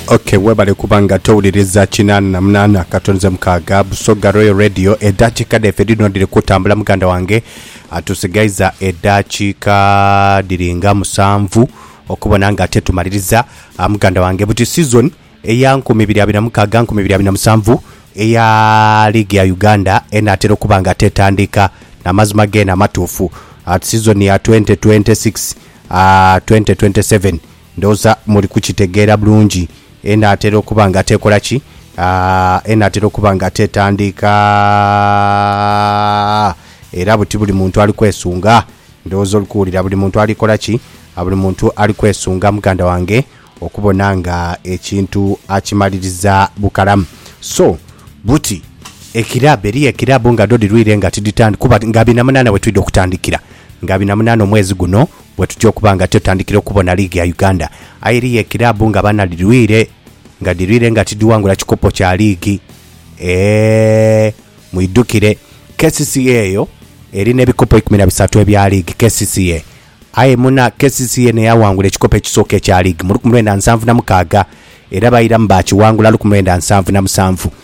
ok webale kuba nga towuliriza kinaana na munaana katonze mukaaga busoga royal radio edaakiika dhaife dhino dhiri kutambula muganda wange Ah, tusigaiza edaakiika dhiri nga musanvu okubona nga ate tumaliriza Ah, muganda wange buti season eya nkumi ibiri abiri na mukaaga nkumi ibiri abiri na musanvu eya liigi ya uganda enaatera okuba nga ate etandika namazima geena amatuufu Ah, season ya 2026 ah, 2027 Ndowooza muli kukitegeera bulungi. Enaatera okuba nga teekola ki? Ah, enaatera okuba nga teetandiika. Era buti buli muntu ali kwesunga. Ndowooza oli kuwulira, buli muntu ali kola ki? A, buli muntu ali kwesunga, muganda wange, okubona nga ekintu akimaliriza bukalamu. So, buti, ekiraabu, eriyo ekiraabu nga dho dhirwiire nga tidhitandika, kuba nga bina munaana we twidha okutandikira, nga bina munaana omwezi guno Bwetutyo okuba nga tyotandikira okubona liigi ya Uganda, aye eriyo ekiraabu nga bana dhirwire nga dhirwire nga tidhiwangula kikopo kya liigi. Eehh mwidhukire kcca eyo eri n'ebikopo ikumi na bisatu ebya liigi kcca aye muna kcca n'eyawangula ekikopo ekisooka ekya liigi mu luku mwenda nsanvu na mukaaga era bairamu baakiwangula luku mwenda nsanvu na musanvu.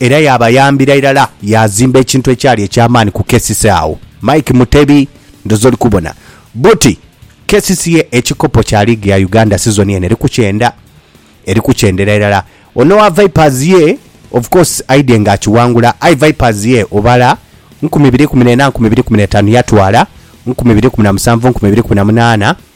Era yaabayambira irala yaazimba ekintu ekyali eky'amaani ku KCC agho. Mike Mutebi, Ndhoozi oli kubona buti KCC ye ekikopo kya liigi ya Uganda sizoni eno eri ku kyenda. Eri ku kyendera irala. Ono owa Vipers ye of course aidhye ng'akiwangula aye Vipers ye obala nkumi ibiri ikumi n'ena, nkumi ibiri ikumi n'etaanu yatwala, nkumi ibiri ikumi na musanvu, nkumi ibiri ikumi na munaana,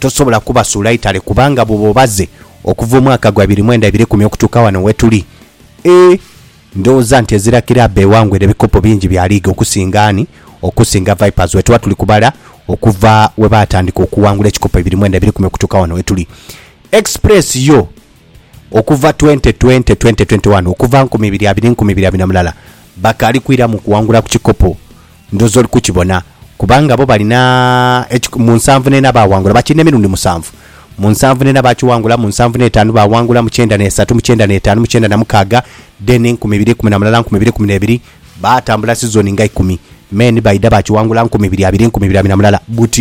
tosobola kubasuula Italy kubanga bwoba obaze okuva omwaka gwa ibiri mwenda ibiri ikumi okutuuka wano wetuli ee ndowooza nti ezira kiraabu ewangwire ebikopo bingi bya liigi okusinga ani? Okusinga Vipers wetuba tuli kubala okuva webaatandika okuwangula ekikopo ibiri mwenda ibiri ikumi okutuuka wano wetuli. Express yo okuva twente twente, twente twenti wani, okuva nkumi ibiri abiri nkumi ibiri abiri na mulala bakaali kwiramu kuwangula ku kikopo. Ndhooza oli kukibona kubanga bo balina eki, mu nsanvu n'ena baawangula, bakirina emirundi musanvu, mu nsanvu n'ena baakiwangula, mu nsanvu n'etaanu baawangula, mu kyenda n'esatu, mu kyenda n'etaanu, mu kyenda na mukaaga, then enkumi ibiri, ikumi na mulala, nkumi ibiri, ikumi n'ebiri, baatambula sizoni nga ikumi, men baidha baakiwangula nkumi ibiri abiri, nkumi ibiri abiri na mulala, but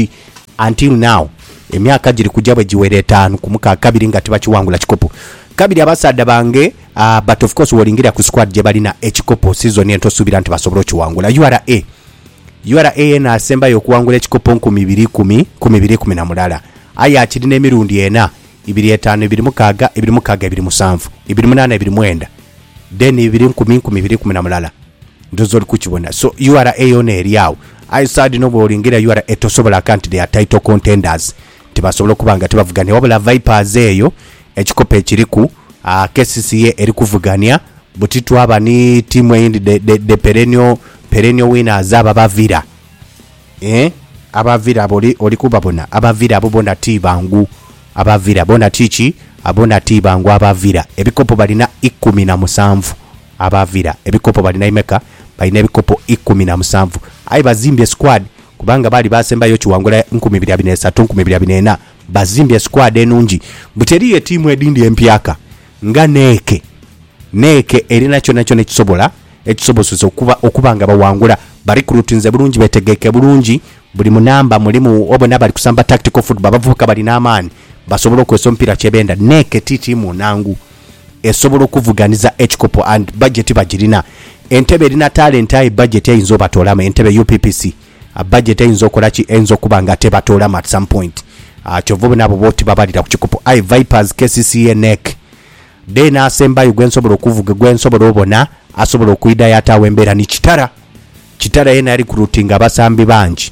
until now emyaka giri kuja bwe giwera etaanu ku mukaaga kabiri nga tibakiwangula kikopo. Kabiri abasaadha bange. Aah but of course wolingirira ku squad gyebalina ekikopo season eno tosuubira nti basobola okiwangula. Ura Ura yeena asembayo okuwangula ekikopo nkumi ibiri ikumi, nkumi ibiri ikumi na mulala aye akirina emirundi ena, ibiri etaanu, ibiri mukaaga, ibiri mukaaga, ibiri musanvu, ibiri munaana, ibiri mwenda then ibiri nkumi, nkumi ibiri ikumi na mulala. Ndhooza oli kukibona. So ura yoona eri agho. Aye sad inho bwolingirira ura tosobola kanti they are title contenders. Tibasobola okuba nga tibavugania wabula Vipers eyo ekikopo ekiriku KCC ye eri kuvugania buti twaba ni tiimu eyindi the, the, the perennial, perennial winners abo aba Villa eh, aba Villa abo oli, oli kubabona aba Villa abo bona ti bangu aba Villa bona ti ki bona ti bangu aba Villa ebikopo balina ikumi na musanvu aba Villa ebikopo balina imeka balina ebikopo ikumi na musanvu aye bazimbye squad Kubanga baali baasembayo ekiwangula nkumi ibiri abiri n'esatu, nkumi ibiri abiri n'ena, bazimbye esikwadi enungi, buti eriyo etiimu edindi empyaka nga n'eke n'eke erina kyonakyona ekisobola ekisobosesa okuba okuba nga bawangula. Barikrutinze bulungi, betegeike bulungi, buli mu namba mulimu obo n'abali kusamba tactical football, abavubuka balina amaani, basobola okozesa omupiira kyebenda. N'eke ti tiimu nnangu. esobola okuvuganiza ekikopo and budget bagirina. Entebe erina talent aye budget eyinza obatoolamu. Entebe UPPC budget eyinza okola ki? Eyinza okuba nga tebatoolamu at some point. Kyova obona abo boti babalira ku kikopo aye Vipers, kcca nec. Then asembayo gwe nsobola okuvuga gwe nsobola obona asobola okwidha yataawo embeera ni Kitara. Kitara yena yarecruitinga abasambi bangi.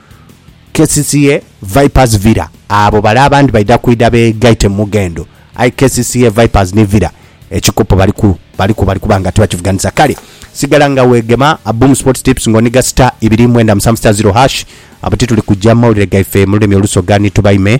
KCCA Vipers Villa Abo bale abandi baidha kwidha begaite mu mughendo aye kcca Vipers ni Villa ekikopo baliku baliku bali kuba nga tibakivuganisa kale sigala nga wegema Boom Sports Tips nga oniga star ibiri mwenda musanvu star zero hash abo tituli kugya mawulire gaife mu lulimi olusoga ni tubaime